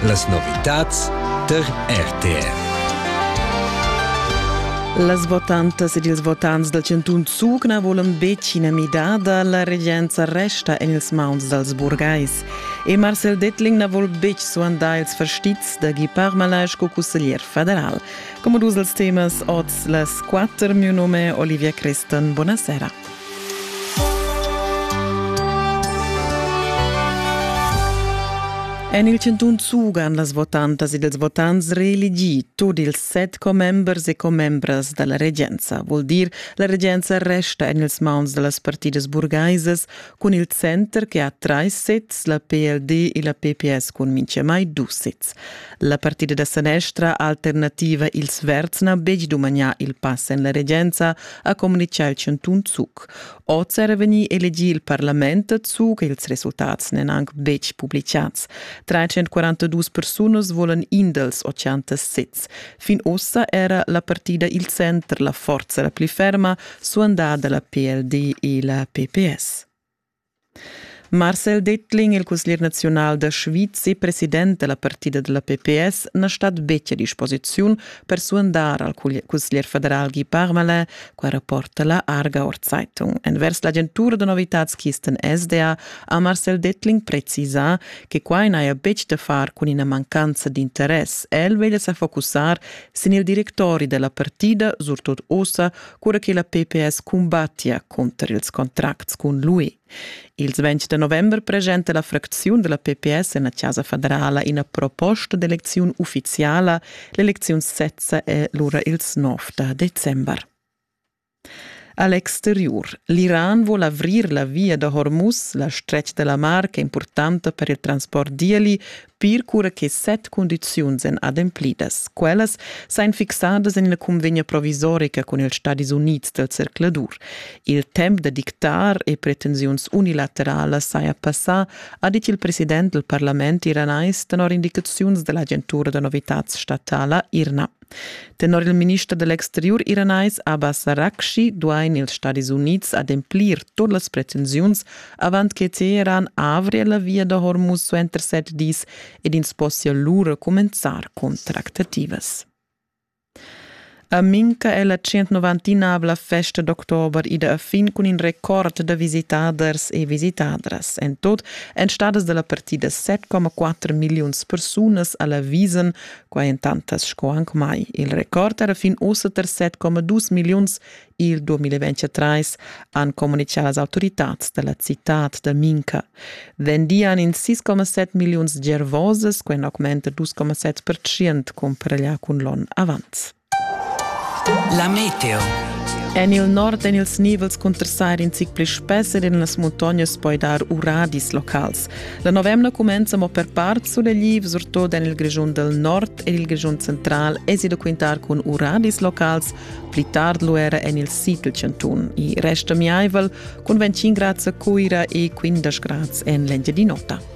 Las novitads tar RTR. Las votantas ed ils votants dal chantun Zug na volan betg ina midada, la regenza resta en ils mauns dals burgais. E Marcel Dettling na vul betg suandar ils fastizs da Guy Parmalin sco cusseglier federal. Come dus als temas oz las quatter, mio nome Olivia Crestan, buonasera. En il chantun sugan las votantas ed ils votants reelegì tut ils set commembers e commembras da la regenza. Vuol dir, la regenza resta en ils mauns da las partidas burgaisas cun il center che ha trais sezs, la PLD e la PPS cun mintgamai dus sezs. La partida da sanestra alternativa Ils Verds n'ha betg dumagnà il pass en la regenza, ha communitgà il chantun Zug. Oz era vegnì elegì il parlament a Zug, ils resultats n'èn anc betg publicads. 342 persunas volan in dals 80 sezs. Fin ussa era la partida il center, la forza la pli ferma, suandada la PLD e la PPS. Marcel Dettling, il cusglier naziunal da Schwyz e president da la partida da la pps, na stat betg a disposiziun per suandar al cusglier federal Guy Parmelin, qua rapporta la Aargauer Zeitung. Envers l'agentura da novitads Kisten SDA ha Marcel Dettling precisà che quai n'haja betg da far cun ina mancanza d'interess. El veglia sa focussar sin il directori da la partida, surtut ussa, cura che la PPS cumbattia cunter ils contracts cun l'UE. Ils 20 da november presenta la fracziun della PPS en la Casa federala ina proposta d'eleziun ufficiala. L'eleziun sezza è lura ils 9 da december. A l'exteriur. L'Iran vuol avrir la via da Hormuz, la stretg della mar ch'è importanta per il transport d'ieli, pir cura che set cundiziuns èn ademplidas. Quellas sain fixadas en la cunvegna provisorica cun ils Stadis Unids dal zercladur. Il temp da dictar e pretensiuns unilateralas saja passà, ha dit il president dal parlament iranais tenor indicaziuns da l'agentura da novitads statala IRNA. Tenor il minister da l'exteriur iranais Abbas Araghchi duain ils Stadis Unids ademplir tut las pretensiuns avant che Teheran avria la via da Hormuz suenter set dis ed ins possia lura cumenzar contractativas. A Minca è la 190-avla festa d'october ida a fin cun in record da visitaders e visitadras. En tot èn stadas da la partida 7,4 milliuns persunas a la Wiesen Quai entantas sco anc mai. Il record era fin ussa tar 7,2 milliuns. Il 2023 han communitgà las autoritads da la citad da Minca. Vendian in 6,7 milliuns gervoses, quai augmenta 2,7% cumpareglià cun l'onn avant. La meteo. En il nord èn ils nivels cunterstar in zic pli spess ed en las muntognas poi dar uradis locals. La novemna cumenza mo per part sulegli, surtut en il Grischun del Nord ed il Grischun central esi da quintar cun uradis locals pli tard luera en il sid del Cantun. I resta miaivel cun 25 grads a Cuira e 15 grads en l'Engiadin'Ota.